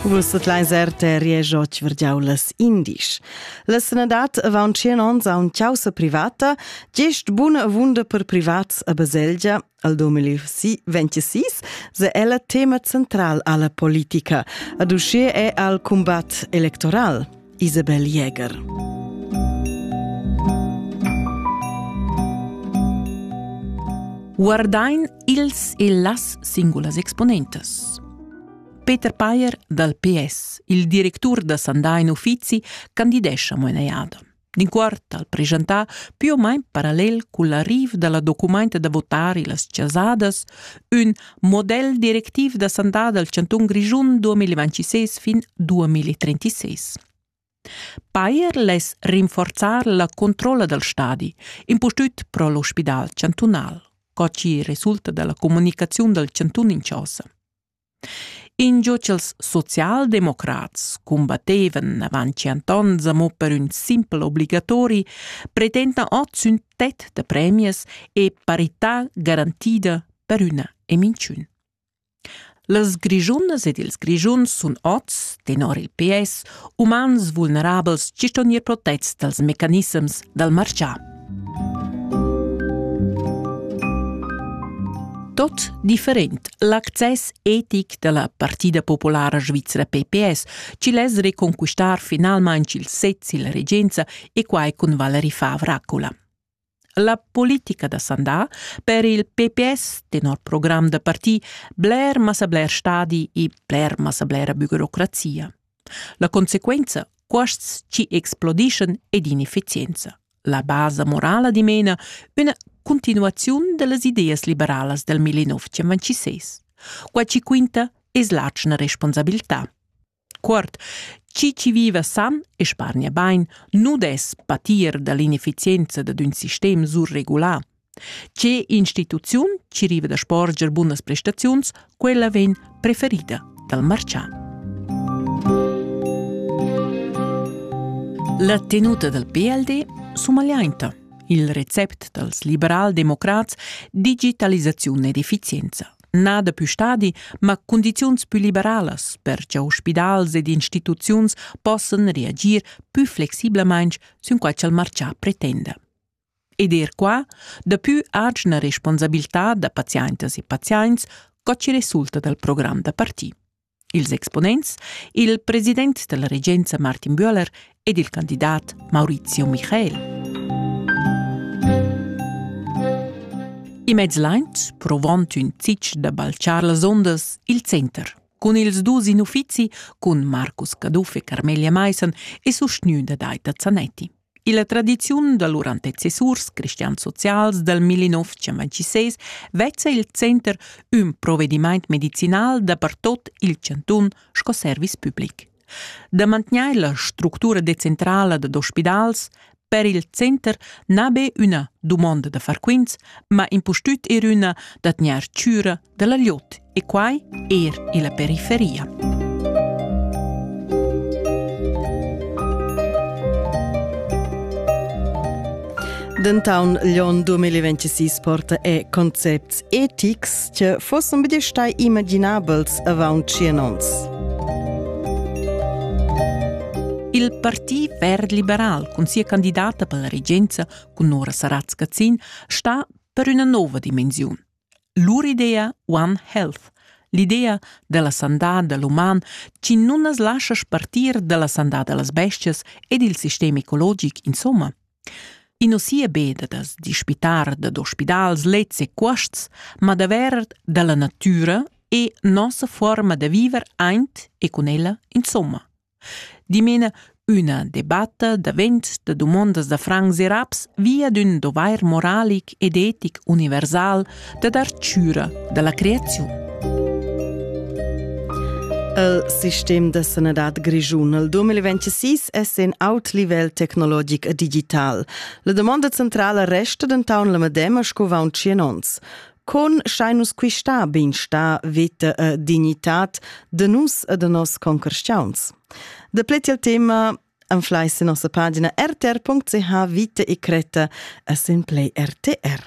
Vus sut leiser te riejo tvergiau las indisch. La sanadad avaun tschien ons a un causa privata, gest buna vunda per privats a Baselgia, al 2026, se ella tema central alla politica, ad usce è al combat electoral, Isabel Jäger. Guardain ils e las singulas exponentas. Peter Payer dal PS, il directur da Sandain Uffizi, candidescha mo inajada. D'in quart al presentà più o meno parallel con l'arrivo della documenta da votari Las Cesadas, un model directiv da sandà dal Chanton Grigiun 2026 fin 2036. Payer less rinforzar la controlla dal stadi, impustüt pro l'ospidal chantunal, co ci resulta dalla comunicaziun dal chantun in Chausa. Ingio ch'ils socialdemocrats cumbattevan avant tschient ons amo per ün simpel obligatori, pretendan ot sün tet da premias e parità garantida per üna e minchün. Las Grischunas ed ils Grischuns sun ots, tenor il PS, umans vulnerabels gist on gnir protets dals mecanissems dal marchà. Tot different. L'access etic da la Partida Populara Svizra PPS ci less reconquistar finalmain il sez illa regenza e quai cun Valerie Favracola. La politica da Sandà per il PPS, tenor program da parti, bler massa bler stadi e bler massa blera bürocrazia. La consequenza, cuosts chi explodischan ed inefficienza. La basa morala dimena üna continuaziun dellas ideas liberalas del 1926. Qua ci quinta es l'atschna responsabilità. Quart, chi ci viva san e spargna bain, nu des patir dall'inefficienza da d'ün sistem surregulà. Tge instituziun ci riva da sporger bunas prestaziuns, quella vegn preferida dal marcian. La tenuta dal PLD sumagliainta. Il recept dals liberal-democrats digitalisaziun ed efficienza. Nada più stadi, ma condiziuns più liberalas per che ospidals ed instituziuns possan reagir più flexiblement sün quai ch'al marcià pretenda. Ed er qua, daplü agina responsabiltà da paziaintas e paziaints co chi resulta dal program da parti. Ils exponents, il president da la regenza Martin Böhler ed il candidat Maurizio Michael. In mez laint, provond ün zich da balchar las ondas, il center, cun ils dus in uffizi, cun Marcus Caduff e Carmelia Maissen e sustgnü da Daita Zanetti. Illa tradiziun da lur antecessurs cristian-socials dal 1926 vezza il center ün provedimaint medicinal dapertot il chantun sco service public. Da mantgnair la structura decentrala dad ospidals per il center n'ha be üna dumonda da far quints, ma impustüt er üna da tgnair chüra dalla Lut e quai er illa periferia. Dentaun l'on 2026 porta e concepts etics che fossen be stai imaginabels avant 100 ons. Il Parti verd liberal cun sia candidata per la regenza cun Nora Saratz-Gazzin sta per üna nova dimensiun. Lur idea One Health, l'idea dalla sandà da l'uman chi nun as lascha spartir dalla sandà da las bestias e dil sistem ecologic insomma. I no sia be da da's dispitar dad ospidals, lets e cuosts, ma davver da la natüra e nossa fuorma da viver aint e cun ella insomma. Dimena üna debatta davent da dumondas da francs e raps via d'ün dovair moralic ed etic universal da dar chüra da la creaziun. El sistem da sanadad grischun al 2026 es in aut livel tecnologic e digital. La domanda centrala resta denton la medema sco vaun tschien ons. Con schai nus quista beinstar, veta e dignitat de nus e de nos concreschiauns? De pleti al tema anflai se nossa pagina rtr.ch vita e creta e semplei RTR.